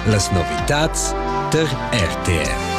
Las novitads tar RTR.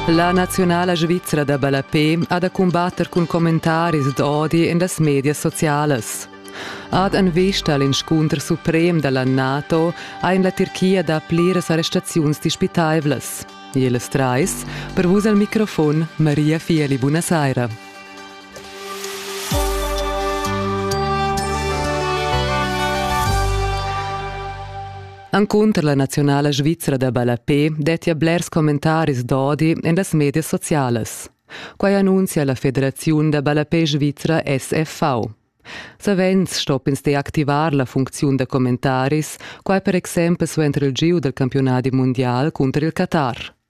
La naziunala svizra da ballapé ha da cumbatter cun commentaris d'odi en las medias socialas. Ad en vista l'inscunter suprem da la NATO ha en la Tirchia dà pliras arrestaziuns dispitaivlas. Ils trais, per vus al microfon, Maria Fieli, buonasera. Encunter la naziunala svizra da ballapé dettia blers commentaris d'odi en las medias socialas. Quai annunzia la Federaziun da ballapé svizra SFV. Savens stopp'ins deactivar la funcziun da commentaris, quai per exempel suenter il giu dal campiunadi mundial cunter il Qatar.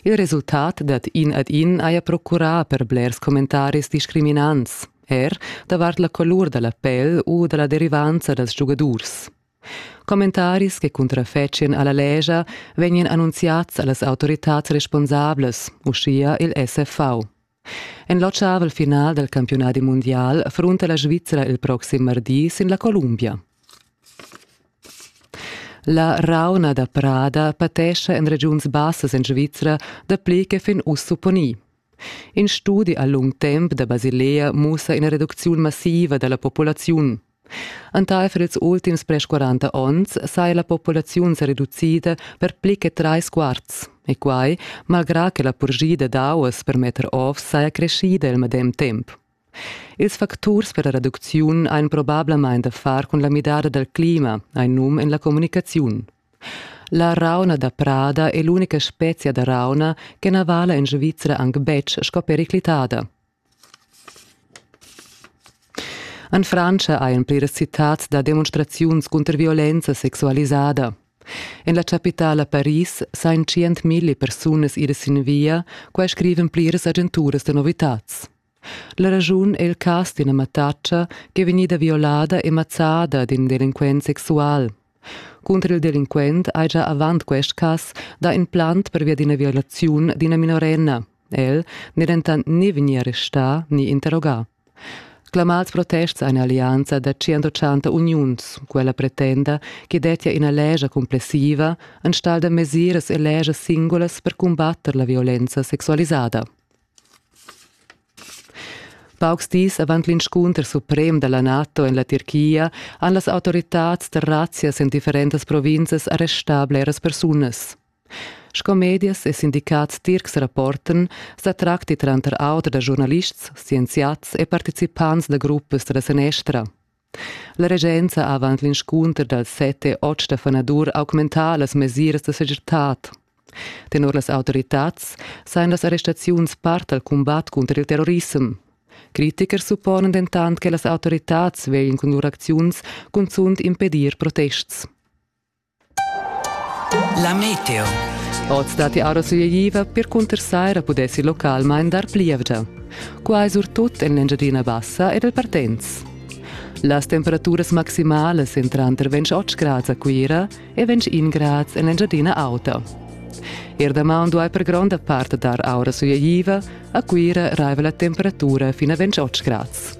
Il resultat dad in ad in haja procurà per blers commentaris discriminants, er davart la colur da la pel u da la derivanza dals giugadurs. Commentaris che cuntrafetschien a la legia vegnan annunziads a las autoritads responsablas, uschia il SFV. En l'otschavel final del campiunadi mundial frunta la Svizzera il proxim mardi sin la Columbia. La rauna da prada patescha en regiuns bassas en Svizzera dapli che fin uss supponì. In studi a lung temp da Basilea mussa ina reducziun massiva da la populaziun. Entaifer ils ultims pres 40 onns saja la populaziun sa reducida per pli che trais quarts. E quai malgrà che la purschida d'auas per metter ovs saja creschida il medem temp. Ils facturs per la reducziun ein probablamain da far cun la midada dal clima, ein num en la communicaziun. La rauna da prada è l'unica spezia da rauna che na vala en Svizzera anc betg sco periclitada. En Frantscha ein pliras citads da demonstraziuns cunter violenza sexualisada. En la chapitala Paris san tschientmilli persunas ir sin via, quai scriven pliras agenturas da novitads. La raschun è il cas d'ina mattatscha ch'è vegnida violada e mazzada d'in delinquent sexual. Cunter il delinquent haja avant quest cas dà in plant pervia d'ina violaziun d'ina minorenna. El n'è dentant ni vegnì arrestà ni interrogà. Clamads protests a un'allianza da 180 uniuns. Quella pretenda che dettia ina lescha cumplessiva enstagl da mesiras e leschas singulas per cumbatter la violenza sexualisada. Paucs dis avant l'inscunter suprem da la NATO en la Tirchia han las autoritads da razzias en differentas provinzas arrestà bleras persunas. Sco medias e sindicats tircs rapportan, sa tracti tranter auter da giurnalists, scienziats e participants da gruppas da la sanestra. La regenza avant l'inscunter dals set e otg da fanadur ha augmentà las mesiras da segirtad. Tenor las autoritads sajan las arrestaziuns part dal cumbat cunter il terrorissem. Critiker supponan dentant che las autoritads vegin cun lur acziuns cunzunt impedir protests. La meteo. Oz datti ara suigliva percunter saira pudessi localmain dar plievgia. Quai surtut en l'Engiadina Bassa ed al Partenz. Las temperaturas maximalas èn tranter 28 grads a Cuira e 21 grads en l'Engiadina Auta. Er damaun duai per gronda part dar aura suigliva, a Cuira raiva la temperatura fin a 28 grads.